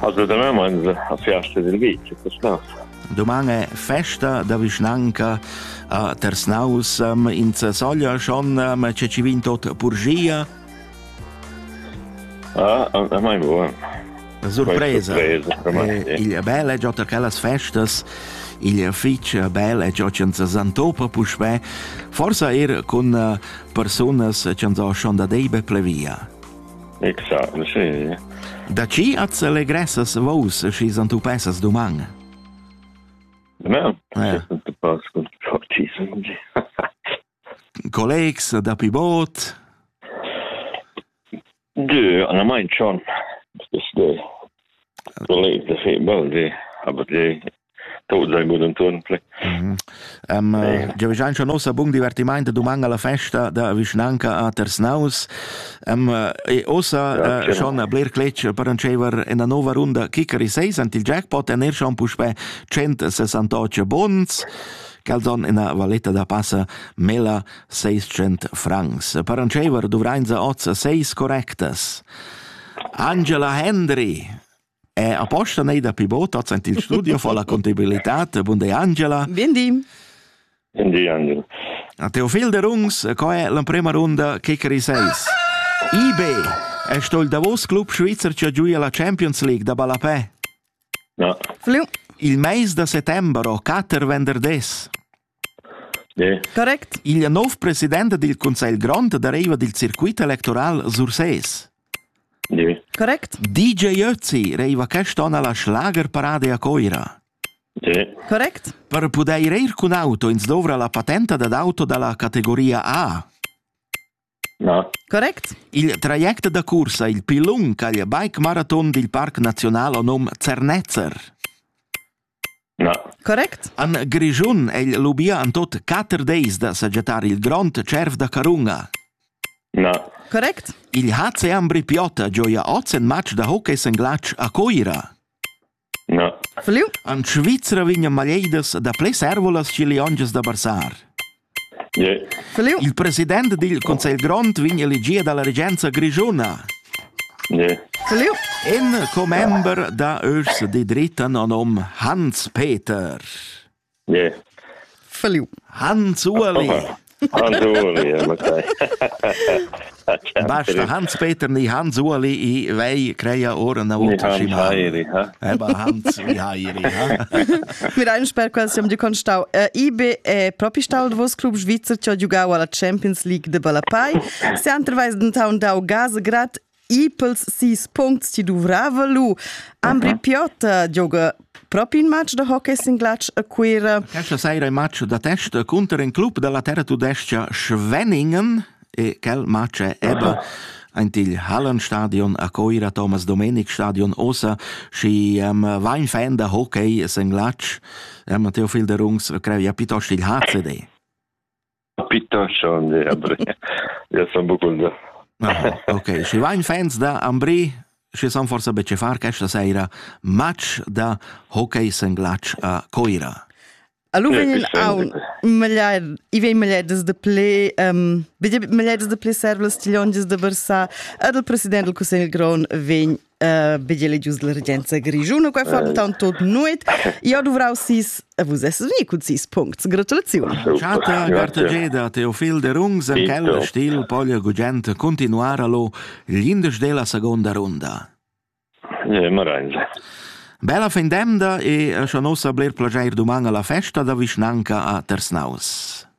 Assolutamain a fiasta dil vitg, questà. Doman è festa da vischnanca a Tersnaus in Sasoglia schon ce ci vin tot purgia? Ah, a mai buon. Surpresa. Eh, il bel è già quellas festas il fitch bel è già senza santopa puspè, forse er con eh, personas che han schon da deibe plevia. Exact, sì. Da chi at s'allegressas vos schi s'antupessas duman? Da me? Eh. Collegs da pi bot? Du, an mai chon. Des de. Collegs da fi bel di. Aber di tot zangu denton play. Mm -hmm. uh, Giavischan schon nossa bung divertiment doman alla festa da vischnanca a Tersnaus. Um, e ossa ja, uh, schon Blair Cletsch per ancever in una nova runda Kickery 6 ant il jackpot en er schon puspe 168 bonds calzon ina valetta da passa mela 600 francs. Per ancever dovrain sa oz 6 correctas. Angela Hendry E aposta nei da pivot en il studio fa la contabilità. Buongiorno Angela. Buongiorno. Buongiorno. A Teofil de Rungs, co è l'emprima runda Kickeri 6? IB è sto il Davos club svizzer che giuia la Champions League da Balapè? No. Il mais da settembre, Kater Venderdés. Correct, igl nov president dil cussegl grond dereva dil circuit electoral Sursés. Correct. DJ Ötzi reiva quest on alla Schlagerparade a Coira. Correct. Per pudair ir cun auto ins dovra la patenta dad auto dalla categoria A. Correct. Il traject da cursa il pli lung caglia bike-maraton dil Parc Naziunal o num Zernetzer. Correct. En Grischun è il lubia en tot quatter deis da sajettar il grond cerv da carunga. Correct. Il HC Ambri Piota gioia oz en match da hockey sen glatsch a Coira. En Svizra vegnan maleidas dapli servolas che liongias da barsar. Il president dil conselh grond vegn elegì dalla regenza grischuna. In commember da urs de dritten nom Hans Peter. Feliu Hans Ueli Basta Hans Peter ni Hans Ueli i vei creia ora na Hans Mir ein sper quels siam du constau IB è propi stau vos club svizzer che ha giugau alla Champions League de Balapai se anterweis den Town dau Gase grad I pels sis puncts ti dovrava lu. Ambri Piota gioga propi in match da hockey singlatsch a Cuira. Questa sera il match da testa contro in club della terra tudesca Schwenningen e quel match è eben ein til Hallenstadion a Coira, Thomas Domenik Stadion osa, și um, vain fan da hockey singlatsch, um, Theophil de Rungs creia piuttosto il HCD. A Pitta schon e Ambri. Ja son bucunda. Ah, ok, schi vain fans da Ambri, schi san forsa be far questa sera match da hockey senglach a Coira. Allora vegn aun meglier i vei megliedes de ple um, megliedes de ple servles tiglonges de versa ad il president del Cussegl Gron vegn vegli legius la regenza grischuna qua fantan tot nuet io dovrau sis vus es veni cun sis puncts gratulaziun Chatta Gartageda Teofil de Rungs en quel stil poglia gugent continuar allo gli indes della seconda runda eh, Marange Bella fin demda e scha nos bler plageir duman alla festa da vischnanca a Tersnaus.